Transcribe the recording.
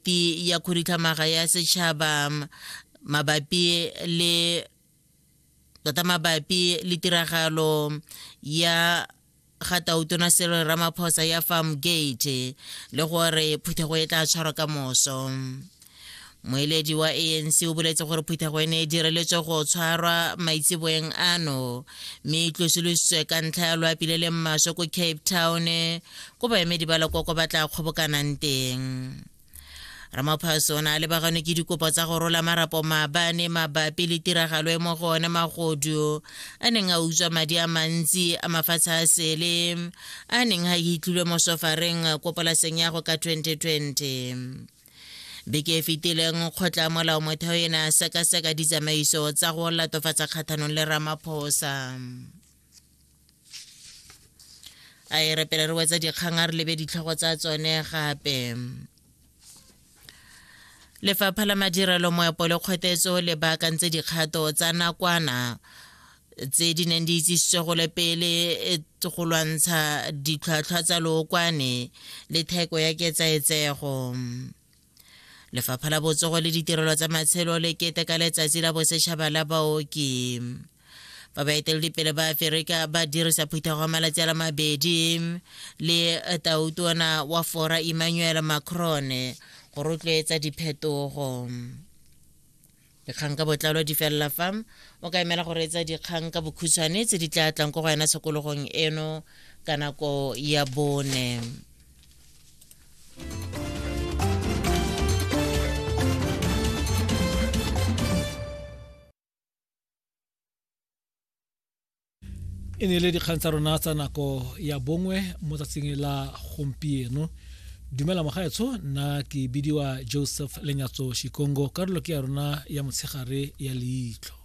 Komiti ya Khuduthamaga ya Setšhaba mabapi le tota mabapi le tiragalo ya ga tautona selo ramaphosa ya farm gate le gore phuthego e tla tshwarwa ka moso moeledi wa anc o boletse gore phuthego e ne e direletswe go tshwarwa maitseboeng ano mme e tlosolositswe ka ntlha ya loapile le mmaswe ko cape town ko baemedi ba lekoko ba tla kgobokanang teng ramaphaso o ne a lebaganwe ke dikopo tsa go rola marapo maabane mabapi le tiragalo e mo go one magodu a neng a utswa madi a mantsi a mafatshe a sele a neng a itlilwe mo sofareng ko polaseng ya go ka 2020 beke e fetileng kgotla molao motheo e ne a sekaseka ditsamaiso tsa go latofatsa kgatlhanong le ramaphosa a e re pele re wetsa dikgang a re lebe ditlhogo tsa tsone gape lefapha la madirelo moepo le kgwetetso le baakantse dikgato tsa nakwana tse di neng di itsisitswe go le pele e, go lwantsha ditlhwatlhwa tsa lookwane le theko ya ketsaetsego lefapha la botsogo le ditirelo tsa matshelo le keteka letsatsi la bosetšhaba la baoki fa baeteledipele ba aferika ba dirisa phuthago ya malatsi a la mabedi le tautona wa fora emmanuel macron go rotloetsa diphetogo dikgang ka botlalo di felela fa o ka emela go reetsa dikgang ka bokhutshwane tse di tla tlang ko go yona tshokologong eno ka nako ya bone e ne e le dikgang tsa rona tsa nako ya bongwe mo tsatsing la gompieno dumela mogaetsho nna ke bidiwa joseph lenyatso shikongo karolo ke ya rona ya motshegare ya leitlho